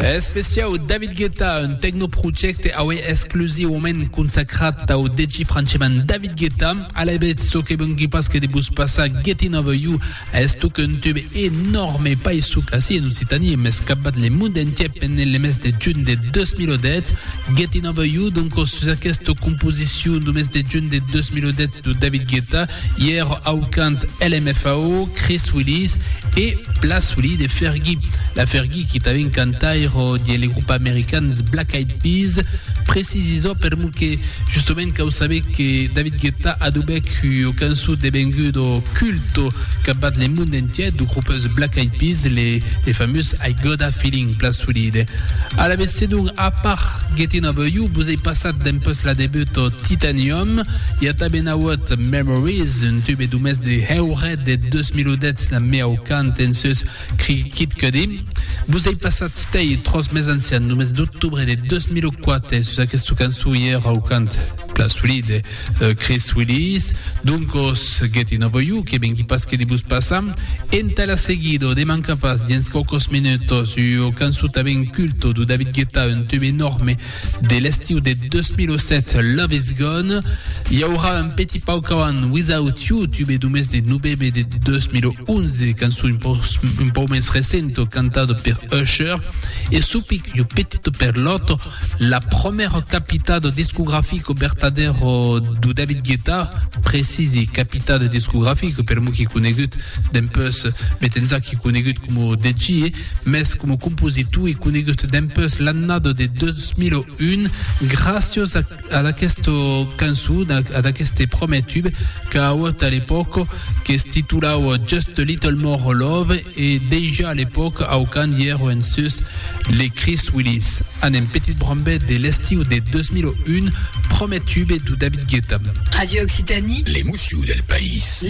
Especiau David Guetta, un tecnoprojecte aué exclusivament consacrat au DJ franceman David Guetta. A la bèt, çò que vengui pas que de vos passar Getting Over You, estoc un tube enorme païsuc ací en Occitanie, mès qu'a bat le mond entier pendent le mes de junh de 2010. Getting Over You, doncos sus aquesta composicion du mes de junh de 2010, de David Guetta, ièr au cant LMFAO, Chris Willis e la soli de Fergie. La Fergie qui tanben cantaire de les groupes americans Black Eyed Peas, precisisò per mo que justament cau saber que David Guetta adubèc ua cançon devenguda culto capbat le monde entier du groupes Black Eyed Peas, le, le famós I Gotta Feeling, la soli de. Alavetz, sedonc, a part Gettin' Over You, vos ei passat dempeus la debut Titanium, I a tanben auut Memories, un tube do mes de heuret de 2010 la meau cant en seus Crickit Cuddy. Vos ei passat stei tros mes ancian, lo mes d'octubre de 2004 e sus aquesta cançó i era au cant pla solid de euh, Chris Willis, doncos Getting Over You que vengui pas que de vos passar. Entà la seguido de manca pas dins quaucos minutos ua cançó tanben culto do David Guetta, un tube enorme De l'estiu de 2007, Love Is Gone, i aurà un petit pauc avant Without You, tube d'umès de novembre de 2011, cançon un pauc, un pauc mens recento, cantado per Usher, e supic jo petito per l'autre, la promèra capitado discografico vertadero do David Guetta, precisi capitado discografico, per mo qui conegut, dempeus met enzac qui conegut como DJ, Mès coma compositor e conegut dempus l'annada de 2001, gràcios ad aquesta cançon, ad aqueste prumèr tube qu'a auut a l'epòca, que se titulava Just a Little More Love, e dejà a l'epòca aucand i èra en sus les Chris Willis. Anem, petit brambet de l'estiu de 2001, prumèr tube de David Guetta. Radio Occitanie. L'emocion del país.